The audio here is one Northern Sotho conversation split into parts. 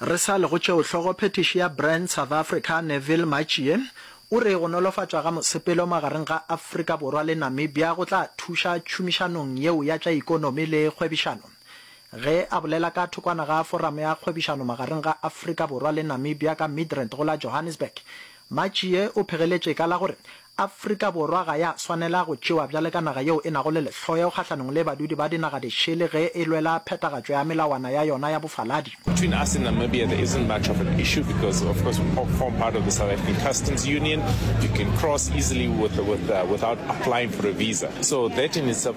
Re sa le go tšeo hlogo phethiši ya Brand South Africa Neville Matjie o re go nolofatšwa ga mosepelo magareng ga Afrika Borwa le Namibia go tla thuša tšhomišanong yeo ya tša ikonomi le kgwebišano ge a bolela ka thokwana ga Foramo ya Kgwebišano magareng ga Afrika Borwa le Namibia ka Midrand go la Johannesburg Matšie o phegeletše ka la gore Afrika Borwa ga ya swanela go tšewa bjale ka naga yeo e nago le lehloyo kgahlanong le badudi ba dinaga dišele ge e lwela phethagatšo ya melawana ya yona ya bofaladi. Between us and Namibia there isn't much of an issue because of course we form part of the South African Customs Union, you can cross easily with, with, uh, without applying for a visa. So that in itself.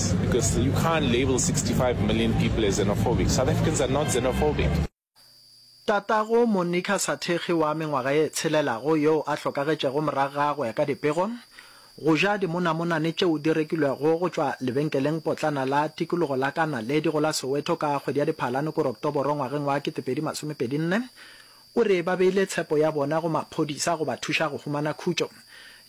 Tatago Monica Sathekge wa mengwaga e tshelelago yoo a hlokagetšego morago ga go ya ka dipego, go ja dimonamonane tšeo di rekilwego go tšwa lebenkelengpotlana la tikologo la ka naledi go la Soweto ka kgwedi ya Diphalane-Oktoboro ngwageng wa 2024, O re ba beile tshepo ya bona go maphodisa go ba thuša go humana khutšo.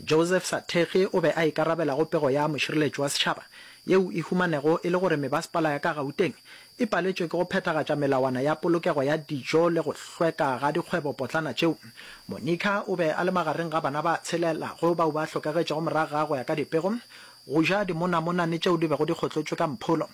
Joseph Sathekge o be a ikarabela go pego ya Mošireletši wa Setšhaba, yeo e humanego e le gore mebasepala ya ka Gauteng e paletšwe ke go phethagatša melawana ya polokego ya dijo le go hlweka ga dikgwebopotlana tšeo. Monica o be a le magareng ga bana ba tshelelago bao ba hlokagetšego morago ga go ya ka dipego go ja dimonamonane tšeo di bego di kgotlotšwe ka mpholo.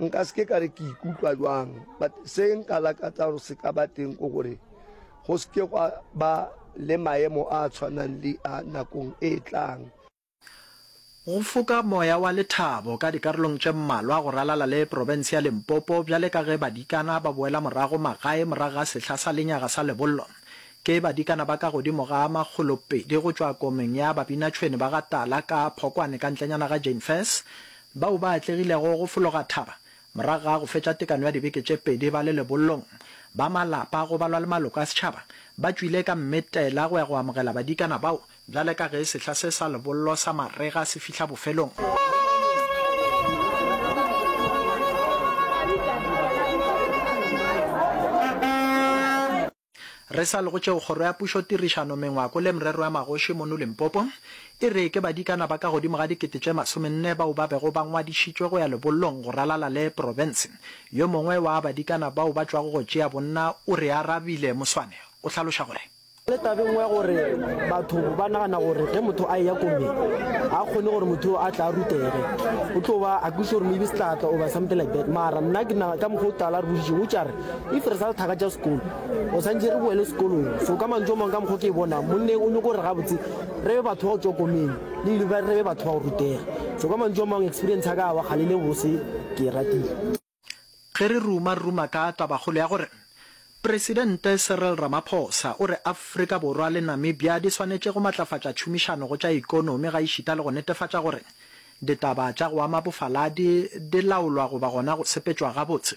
Nka se ke ka re ke ikutlwa bjang, but se nka lakatsa gore se ka ba teng ke gore go se ke gwa ba le maemo a a tshwanang le a nakong e tlang. Go foka moya wa lethabo ka dikarolong tše mmalwa go ralala le profense ya Limpopo bjale ka ge badikana ba boela morago magae morago ga sehla sa lenyaga sa lebollo. Ke badikana ba ka godimo ga makgolopedi go tšwa komeng ya babinatšhwene ba ga Tala ka Phokwane ka ntlenyana ga Jane First Bao ba atlegilego go fologa thaba morago ga go fetša tekano ya dibeke tše pedi ba le lebollong, ba malapa go balwa le maloko a setšhaba, ba tšwile ka mmetela go ya go amogela badikana bao bjale ka ge sehla se sa lebollo sa marega se fihla bofelong. Re sa le go tšeo, Kgoro ya Pušo, Tirišano, Mengwako le Merero ya Magoši mono Limpopo e re ke badikana ba ka godimo ga dikete tše masomenne bao ba bego ba ngwadišitšwe go ya lebollong go ralala le profense. Yo mongwe wa badikana bao ba tšwago go tšea bonna o re arabile. Moswane o hlaloša gore. Le tabeng ya gore batho ba nagana gore ge motho a eya ko me, ga a kgone gore motho yoo a tla a rutege, o tlo ba a kwešiša gore maybe se tla tla oba something like that. Mara nna ke nagana ka mokgwa o tala a re boditšego, o tša re If re sa lethaka tša sekolo, o santše re boele sekolong. So ka mantšu a mang ka mokgwa ke e bonang, monneng o nyoko gore gabotse re be batho ba go tšwa komeng, le university re be batho ba go rutega. So ka mantšu a mang experience ya ka ya bogale le bose ke e ratile. Ge re ruma ruma ka tabakgolo ya gore Presidente Cyril Ramaphosa o re Afrika Borwa le Namibia di swanetše go matlafatša tšhomišano go tša ekonomi gaešita le go netefatša gore ditaba tša go ama bofaladi di laolwa goba gona go sepetšwa gabotse,